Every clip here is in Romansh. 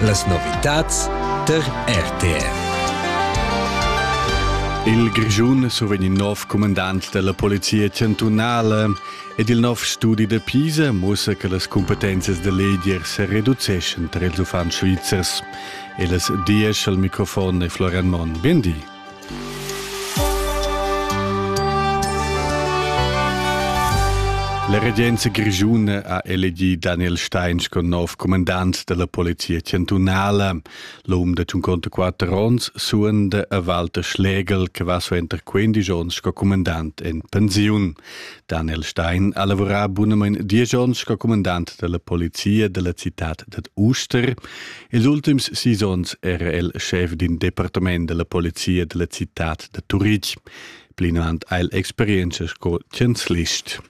Las novitads tar RTR. Il Grischun survegn il nov comandant della Polizia Chantunala ed il nov studi da Pisa mussa che las competences da leger se reduceschan tra ils uffants svizzers. E las dies al microfon e Florian Monn. Bien di. La regenza grischuna ha elegì Daniel Stein sco nov comandant della polizia chantunala. L'um de 54 onns suende a Walter Schlegel, che va suenter 15 onns sco comandant en pensiun. Daniel Stein ha lavorat bunament 10 onns sco comandant della polizia della città ded Uster. Ils ultims sis onns era el schef d'in departament della polizia della citad da Turitg. Plinavant ha el experienza sco chanzlist.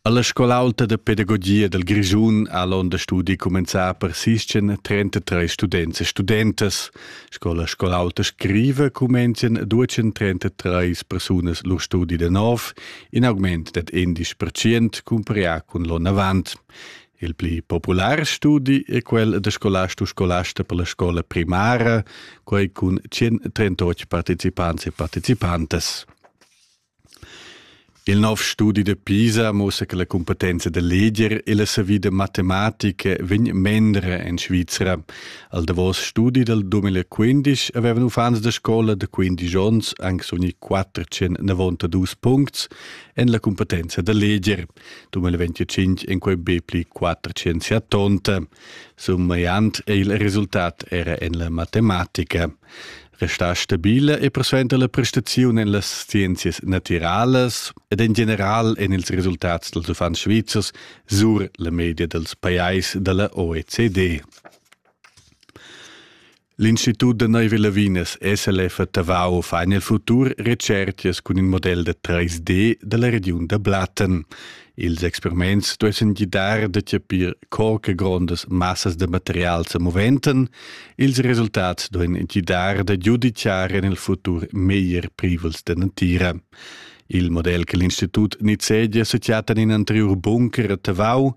Alla scola alta de pedagogia del Grischun ha l'onda studi comenzà per sischien 33 students e studentas. Scola scola alta scrive comenzian 233 persunas lur studi de nov, in augment ded 11% cumparià cun l'onn avant. Il pli popular studi è quel da scolast u scolasta per la scola primara, quai cun 138 participants e participantas. Il nov studi de Pisa mussa che la competenza da leger e la savida matematica vegn mendra en Svizra. Al davos studi del 2015 avevano fans da scola de 15 onns anche ogni 492 punts en la competenza da leger. 2025 in quei be pli 470. Summaiant è il risultat era en la matematica. Resta stabile e persuenta la prestazione en las scienzias naturalas ed in general en ils risultats dels uffants svizzers sur la media dels pajais dalla OECD. L'Institut da Neuve Lavinas SLF a Tavau fa nel futur recerchias cun il model da 3D dalla regiun da Blatten. Ils experiments duessen gidar da chapir co che grondas massas da material sa moventen. Ils resultats duessen gidar da giudiciar en il futur meglier privels da natira. Il model che l'Institut nizzegia sa chatta in anterior bunker a Tavau.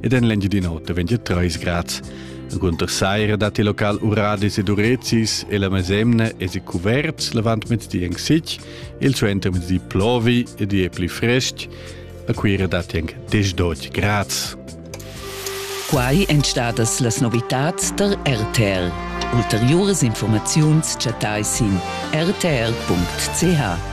ed en l'Engiadin'Ota vegn treis grads. Gunter saira datti local uradis ed urezis e la mesemna è si cuverts l'avantmezdi en sic, il suentermezdi plovi ed è pli frestg. A Cuira datti anche 10-12 grads. Quai èn stadas las novitads der RTL. Ulteriuras informaziuns chattai sin rtr.ch.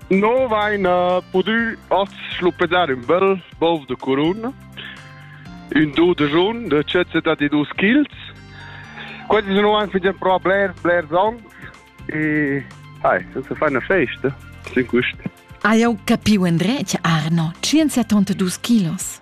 No vain uh, pudü oz schluppedar ün bel bov de curun, ün do de jun de cezza da di dus childs. Questi sono anche ein pro bler, bler zon e hai, senza fare una festa, sin quest. Ah, eu capiu, Andrea, Arno, 172 kilos.